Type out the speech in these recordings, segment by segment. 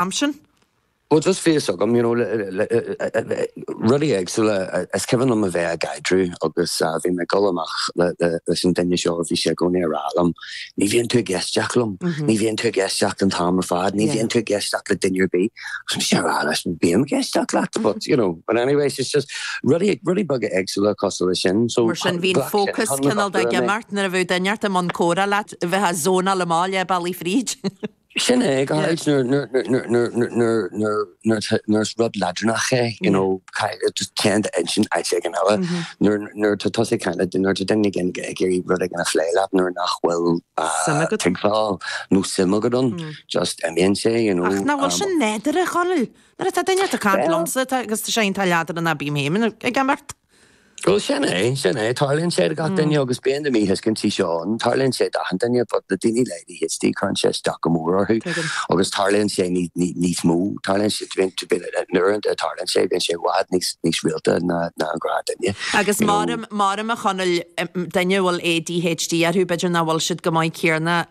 am sin. Bhuel, just tá fhios agam, you know, rudaí éagsúla is cuimhin liom a bheith i gcaidreamh agus bhí mé ag dul amach leis an duine seo, bhí sé i gcónaí ag rá liom, ní bhíonn tú ag éisteacht liom, ní bhíonn tú ag éisteacht an t-am ar fad, ní bhíonn tú ag éisteacht le duine ar bith. Agus mise ag rá leis, bím ag éisteacht leat but, you know, but anyways, it's just rudaí, rudaí beaga éagsúla cosúil leis sin. So, ghlac sé an t-am a bhí orm é. Mar sin, bhí an fócas cineál ag imeacht nuair a bheadh duine inteacht i mbun comhrá leat, bheifeá zoneáilte amach leath bealaigh fríd. Sin é, go háirid nuair is rud leadránach é, you know, just téann d'intinn áit éigin eile. Nuair atá tusa ag caint, nuair atá duine éigin ag iarraidh rud éigin a phlé leat nuair nach bhfuil tuigbheáil nó suim agat ann, just imíonn sé, you know. Ach nach bhfuil sin nádúrtha, a Chonaill? Nuair atá duine ag caint liomsa agus tá sé leadránach bím féin ag imeacht. Bhuel, sin é, sin é. Tarlaíonn sé do gach duine agus bíonn na míthuiscintí seo ann. Tarlaíonn sé d'achan duine but na daoine le ADHD cuireann sé isteach go mór orthu agus tarlaíonn sé níos mó, tarlaíonn sé, na uaireanta a tharlaíonn sé bíonn sé i bhfad níos, níos rialta ná an gnáthdhuine. Agus m'anam, m'anam a Chonaill, daoine a bhfuil ADHD orthu b'fhéidir nach bhfuil siad go maith céarna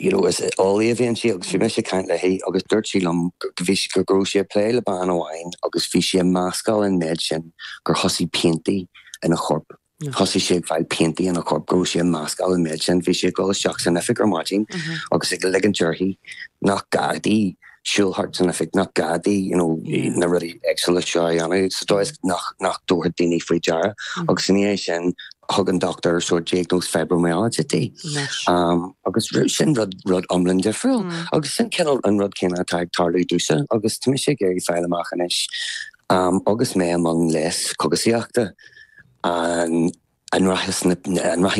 you know, is eolaí a bhí inti agus bhí mise ag caint léi agus dúirt sí liom go bhí, go raibh sí ag plé le bean amháin agus bhí sí ag mascáil an méid sin gur thosaigh piantaí ina chorp, thosaigh sí ag fáil piantaí ina chorp, go raibh sí ag mascáil an méid sin, bhí sí ag dul isteach san oifig ar maidin agus ag ligint uirthi nach gá di siúl thart san oifig, nach gá di you know na rudaí éagsúla seo a dhéanamh sa dóigh is nach dtabharfadh daoine faoi deara agus ina dhiaidh sin thug an dochtúir sórt diagnóis fibromyalgia di agus sin rud iomlán difriúil agus sin cineál an rud céanna atá ag tarlú domhsa agus tá mise ag iarraidh fáil amach anois agus mé i mbun leigheas cógaisíochta an An rachaidh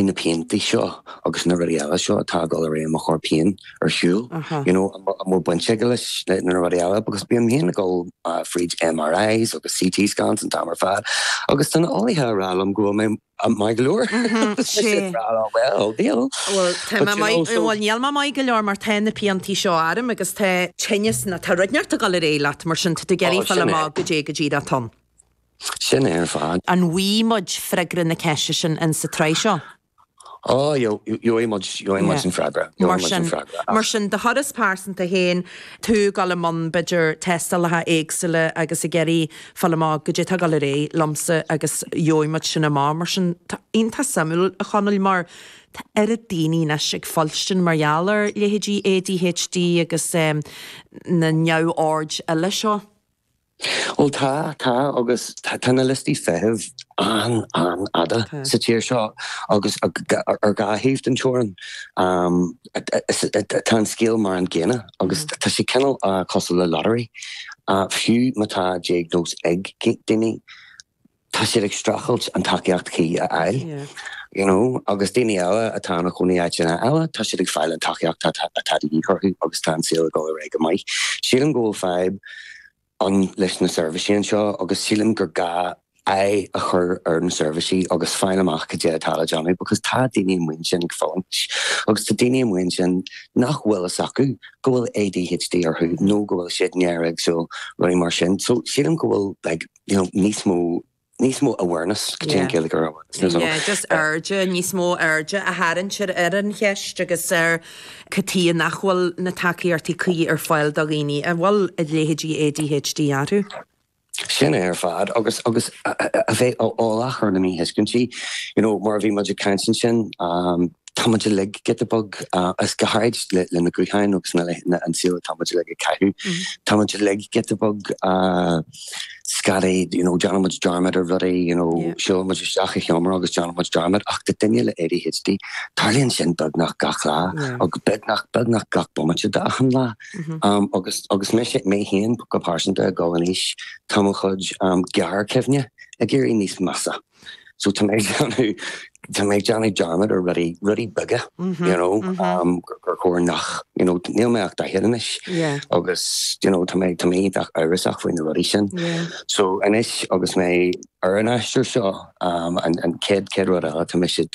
na pianta seo agus na rudaí eile seo atá ag dul ar aghaidh i mo chorp féin ar shiúl? You know, an bhfuil baint aige leis na rudaí eile? Because bím féin ag dul fríd MRIs agus CT scans an t-am ar fad agus tá na heolaithe ag rá liom go bhfuil mé maith go leor. Well, níl. Bhuel, níl mé maith go leor mar tá na pianta seo orm agus tá tinneas, tá rud inteacht ag dul ar aghaidh leat mar sin tá tú ag iarraidh fáil amach caidé atá ann. Sin é ar fad. An bhfuighidh muid freagra na ceiste sin ins sa tsraith seo? Ó, gheobhaidh muid, gheobhaidh muid an freagra, gheobhaidh muid an freagra, ach. Mar sin, do thuras pearsanta féin, tú ag gabháil i mbun, b'fhéidir, tástálacha éagsúla agus ag iarraidh fáil amach, caidé atá ag dul ar aghaidh liomsa agus gheobhaidh muid sin amach. Mar sin, tá sé iontach suimiúil, a Chonaill, mar tá oiread daoine anois ag fuilstean mar gheall ar leithéidí ADHD agus na neamhoird eile seo. Bhuel tá, tá agus tá. Tá na liostaí feithimh an-, an-fhada sa tír seo agus ar dhá thaobh den teorainn tá an scéal mar an gcéanna agus tá sé cineál cosúil le lottery, fiú má tá diagnóis ag daoine. tá siad ag streachailt an tacaíocht chuí a fháil, you know, agus daoine eile atá ina gcónaí in áiteanna eile, tá siad ag fáil an tacaíocht atá de dhíth orthu agus tá an saol ag dul ar aghaidh go maith. Sílim go bhfuil fadhb ann leis na seirbhísí anseo agus sílim gur gá aghaidh a chur ar na seirbhísí agus fáil amach cad é atá le déanamh because tá daoine amuigh ansin ag fulaingt agus tá daoine amuigh ansin nach bhfuil fhios acu go bhfuil ADHD orthu nó go bhfuil siad néaréagsúil, rudaí mar sin. So sílim go bhfuil like. you know níos mó, níos mó awareness, caidé an Ghaeilge ar awareness, níos mó. Yeah, just aird, níos mó airde a tharraingt ar an cheist agus ar cad tuighe nach bhfuil na tacaíochtaí cuí ar fáil do dhaoine a bhfuil leithéidí ADHD orthu. Sin é ar fad agus, agus a bheith eolach ar na míthuiscintí, you know mar a bhí muid ag caint ansin, tá muid uilig giota beag agus go háirid leis na gutháin agus an saol atá muid uilig ag caitheamh, tá muid uilig giota beag, scaipthe, you know, déanann muid dearmad ar rudaí, you know, siúlann muid isteach i seomra agus déanann muid dearmad ach do duine le ADHD tarlaíonn sin beagnach gach lá agus beagnach, beagnach gach bomaite d'achan lá. Agus, agus mise, mé féin go pearsanta ag gabháil in aois, tá mo chuid gearrchuimhne ag éirí níos measa. So tá mé ag déanamh, tá mé ag déanamh dearmad ar rudaí, rudaí beaga, you know, gur chóir nach, you know, níl mé ach daichead anois agus, you know, tá mé, tá mé iontach amhrasach faoi na rudaí sin. So anois agus mé ar an aistear seo, an chéad, chéad rud eile, tá mise,